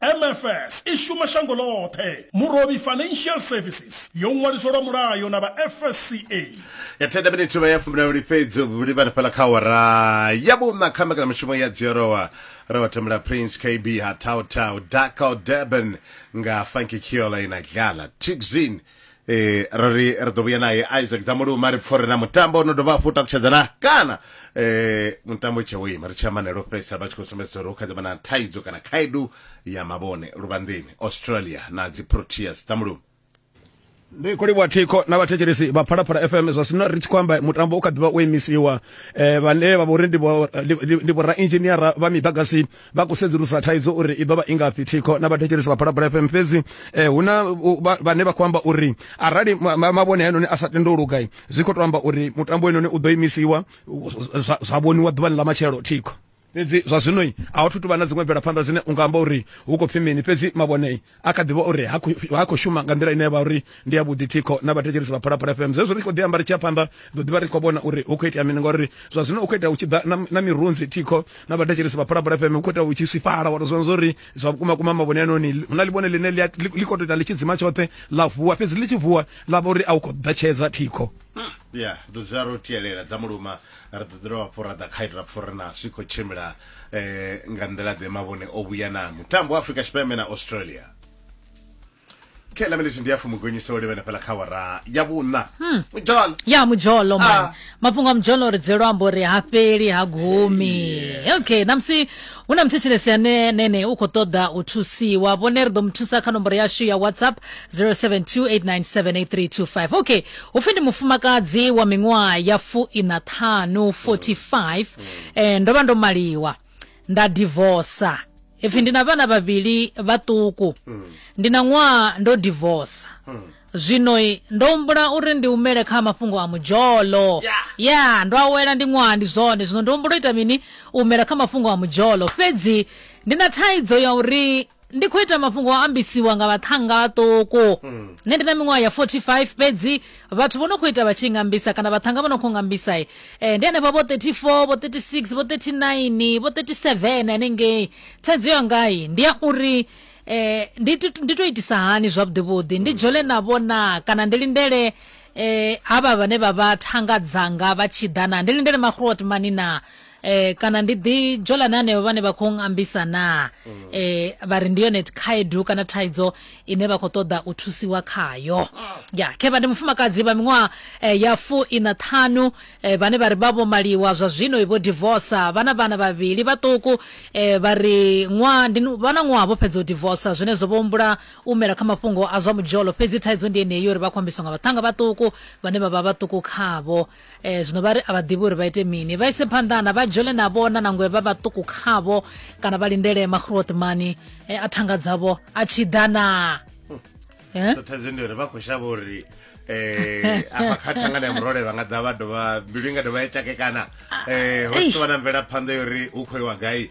MFS i shuma shango ḽoṱhe. Murovhi Financial Services yo ṅwaliswa lwa mulayo na vha FSCA. ya thenda minithu vha ya fumbilawuli fhedzi vhuli vha fhala kha wara ya vhuṋa kha mbekanyamushumo ya dziorowa ro vha thembela prince kb ha tautau dakal durban nga funky kiola ina dlala tixin eh ro ri ri ḓo vhuya naye isaac dzamuluma ri pfore na mutambo no dovha hafhu takutshedza na kana eh mutambo tshe wo ima ri tshi amanela u fhedzisela vha tshi khou sumbedzisa uri hu kha ḓi vha na thaidzo kana khaedu ya mavhone luvhanḓeni australia na dzi proteas dzamuluma ndi khou livhuwa thikho na vhathetshelesi vha phalaphala fm zwa zwino ri tshi khou amba mutambo u kha ḓivha wo imisiwa um vhane vha vha uri ndi vhorainzhiniara vha miḓagasi vha khou sedzulusa thaidzo uri i ḓo vha i ngafhi thikho na vhathetshelesi vha phalaphala fm fhedzi eh, hu na vhane vha khou amba uri arali mavhone haenoni a sa tende u lugai zwi khou to amba uri mutambo wenoni u ḓo imisiwa zwa vhoniwa ḓuvhani ḽa matshelo thikho fhedzi zwa zwinoi a hu thu tuvha na dziṅwe mvelaphanḓa dzine u nga amba uri hu khou pfi mini fhedzi mavhonei a kha ḓivha uri ha khou shuma nga nḓila ine ya vha uri ndi ya vhuḓi thikho na vhathetshelesi vha phalaphala fm zwezwo ri tshi khou ḓi amba ri tshi ya phanḓa ḓo ḓivha ri khou vhona uri hu khou itea mini ngauri zwa zwino u khou itea u tshi ḓa na mirunzi thikho na vhathetshelesi vha phalaphala fm hu khou itea u tshi swifhala wa tou zwona zwauri zwa vhukuma kuma mavhone anoni hu na ḽivhone ḽine ḽi khou tou ita ḽi tshi dzima tshoṱhe ḽa vuwa fhedzi ḽi tshi vuwa ḽa vha uri a u khou ḓatshedza thikho hmm, ya ḓo dzula ro tielela dza muluma ri ḓo ḓira wa fhura ḓa kha ita pfha uri na zwi khou tshimbila eh, nga nḓila ḓe mavhone o vhuya na mutambo wa afrika tshipembe na australia khe lamelethi ndi ya fumugonyisa o livhena fhala kha wara ya vhuṋa hmm. mujolo ya mujolo ah. man mafhungo a mujolo ri dzwelo ambo ri ha fheli ha gumi okay namusi hu na muthetshelesi ane nene u khou ṱoḓa u thusiwa vhone ri ḓo mu thusa kha nomboro yashu ya whatsapp 0728978325 okay hu pfi ndi mufumakadzi wa miṅwaha ya fuiṋa ṱhanu 45 eh ndo vha ndo maliwa nda divorsa ipfi ndi na vhana vhavhili vhaṱuku ndi na ṅwaha ndo divorsa zwino i, ndo humbula uri ndi humele kha mafhungo a mudzholo Yeah. ya ndo awela ndi ṅwaha ndi zwone zwino ndo humbula u ita mini u humela kha mafhungo a mudzholo fhedzi ndi na thaidzo ya uri ndi khou ita mafhungo a ambisiwa nga vhaṱhanga vhaṱuku nṋe ndi na miṅwaha ya 45 fhedzi vhathu vho no khou ita vha tshi ngambisa kana vhaṱhanga vho no khou ngambisa e ndi henefha vho 34 vho 36 vho 39 vho 37 hanengei thaidzo yangai ndi ya uri eh ndi ti- ndi to itisa hani zwavhuḓi vhuḓi ndi dzhole na vhona kana ndi lindele eh hava vhane vha vha thanga dzanga vha tshi ḓa na ndi lindele makhulu wa timani na eh kana ndi ḓi dzhola na hanevho vhane vha khou ngambisa na mm. eh vha ri ndi yone khaedu kana thaidzo ine vha khou ṱoḓa u thusiwa khayo ah. ya khevha ndi mufumakadzi vha miṅwaha eh, ya fu ina ṱhanu eh, vhane vha ri vha vho maliwa zwa zwino vho divorce vhana vhana vhavhili vhaṱuku eh, vha ri ṅwaha ndi vhana ṅwaha vho fhedza u divorce zwine zwo vho humbula u mela kha mafhungo a zwa mudzholo fhedzi thaidzo ndi yeneyo uri vha khou ambiswa nga vhaṱhanga vhaṱuku vhane vha vha vhaṱuku khavho E, zwino vha ri a vha ḓivhi uri vha ite mini, vha ise phanḓa na vha dzhole na vhona nangwe vha vhaṱuku khavho kana vha lindele makhuluoṱmani e, a thanga dzavho a tshi ḓa na eh? thaidzo ndi uri vha khou shavha uri eh apa kha thangana ya murole vha nga ḓa vha dovha mbilu i nga dovha ya tshakekana eh ho sivha na mvelaphanḓa yori hu khou iwa gai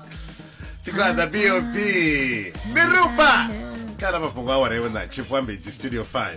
tikwanza bob mirupa kana mafhungo awara iwe na chief wambedzi studio 5